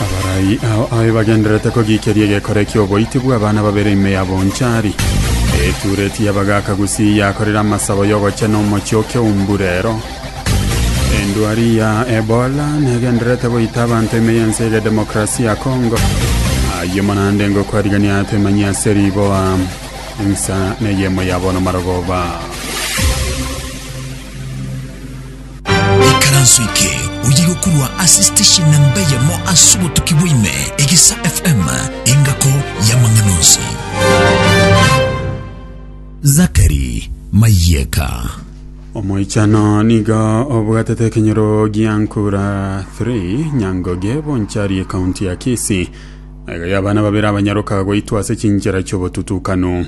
Abarai ao aye bagendererete kogiikeria egekore ki'oboiti bw'abana babere ime ya Bonchari. Etureti y'abagaaka gusii yakorire amasabo y'ogochena omochie o Keumburero. Endwari ya Ebola negendererete goita abanto ime y'ense ege Demokrasi ya Kongo. Ayio manande ngokwarigania atemanyie ase riboa ensa neyemo ya bono marogoba. Ekaranso eke oye gokorwa ase station namba eyemo ase obotuki bwa ime, Egisa FM, engako y'amang'ana onsi. Zachary Mayeka. Omoichano nigo obwatete ekenyoro gia nkura 3 Nyangoge bonchari ekaunti ya Kisii. Aiga y'abana babere abanyaroka goitwa ase chinchera chiobotutukanu.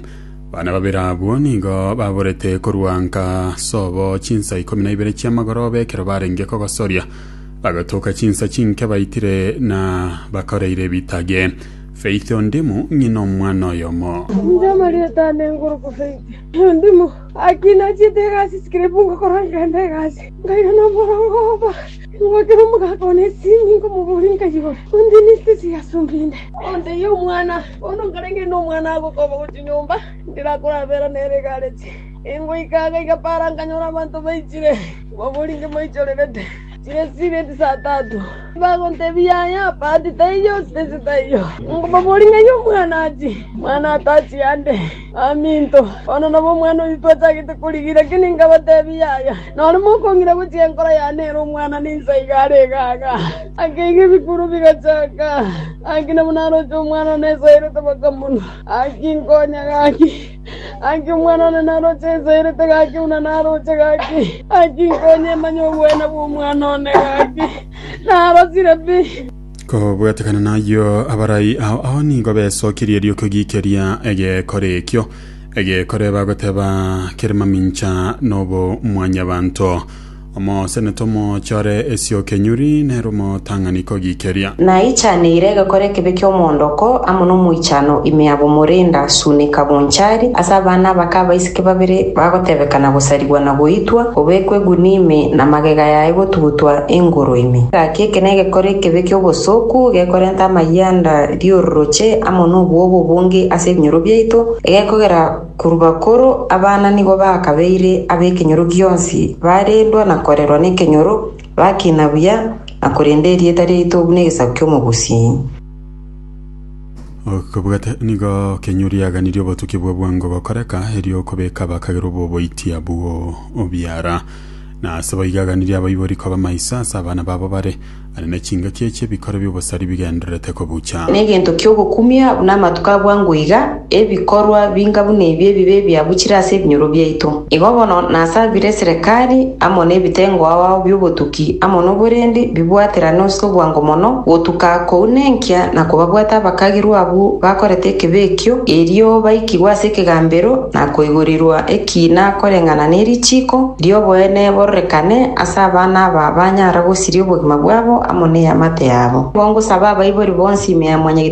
Bana babere abwo nigo baborete korwa nka sobo chinsa ikomi na ibere chi'amagoroba ekero barenge kogosoria, bagatuka chinsa chinke baitire na bakoreire ebitage. Faith Ondimu, ng'ina omwana oyomo. Inche amarieta ane nkorokwa Faith Ondimu. Gaki nachiete egasi sikiribu ngokora nkenda egasi nkaira nomorongo oba ngwakera omogaka one esimi nkomobori nkayigora ontinisite chigasumba inde onteie omwana. Bono nkarenge nomwana ago koba gochia nyomba, ndirakorabeera nere egareti. Ingoika iga igapaara nkanyora abanto baichire, baboringe moichorerete, chiresiria chisatato. Bagontebia, Yaya, bahati taiyo, sitense taiyo, onkobaboringerie omwana achie, omwana ataachie ande. “Baminto, bono nabo omwana oito twachagete korigia, lakini nkabateebia, Yaya, nore mokong'ina gochia enkoro yane ere omwana ninsa iga are iga aaga. Akeiga ebikuro bigachaka, gaki nabo naroche omwana one esaerete bakamonwa. Gaki nkonya gaki, gaki omwana one naroche esaerete gaki buna naroche gaki, gaki nkonya emanye obweene bw'omwana one gaki narosire pi.” Kobwatekana nayio abarai ao ao nigo besokirie ri'okogikeria egekore ekio, egekore bagoteba kere mamincha n'obomwanyabanto. Omosenete omochore esiokenyuri nere omotang'ani kogikeria. Naichaneire egekore ekebe ki'omoondoko amo nomoichano ime abwo Morinda Sunika Bonchari ase abana abake abaiseke Inki babere bagotebeka na gosarigwa na goitwa, obekwe egunia ime, na magega yaye gotugutwa engoro ime? Gaki eke negekore ekebe ki'obosooku, gekorenta amayianda ri'ororoche amo nobwoba obonge ase ebinyoro biaito, egekogera korwa bakoro abana nigo bakabeire ab'ekenyoro gionsi, barendwa na korerwa nekenyoro, bakina buya, na korenda erieta riaito buna egesaku ki'omogusi. Okobwata nigo kenywa riaganirie obotuki bwa bwango gokoreka, erio okobeka bakagera oboboiti abwo obiara. Na ase boigo aganirie abaibori koba maiso ase abana babo bare, are ne chingaki echi ebikoro bi'obosari bigendererete kobucha. Negento kiogokumia buna amatuko a bwango iga. Ebikorwa binga buna ebi ebibe ebiabuchire ase ebinyoro biaito, igo bono nasabire eserekari amo nebitengo ao bi'obotuki amo noborendi bibwaterane ase obwango mono, gotuka kounenkia na kobabwata abakagirwa abwo bakorete ekebe ekio, erio baikigwe ase ekegambero na koigorirwa ekiina koreng'ana ne richiiko ri'oboene bororekane ase abana aba banyara gosiria obogima bwabo amo neamate yabo. Nigo ngosaba abaibori bonsi ime ya mwanyagitar'oino.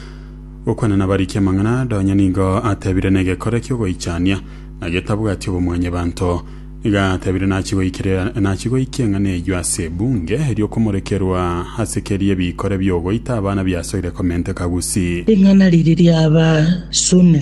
Gokwana nabariki amang'ana aya donye nigo atebire negekore kiogoichania, na getabwati obomwanyebanto. Nigo atebire nachi goikire nachi goikia eng'ana eyio ase ebunge, erio komorekerwa ase keria ebikore biogoita abana biasoire komenteka Gusii. Ring'ana riri riaba sune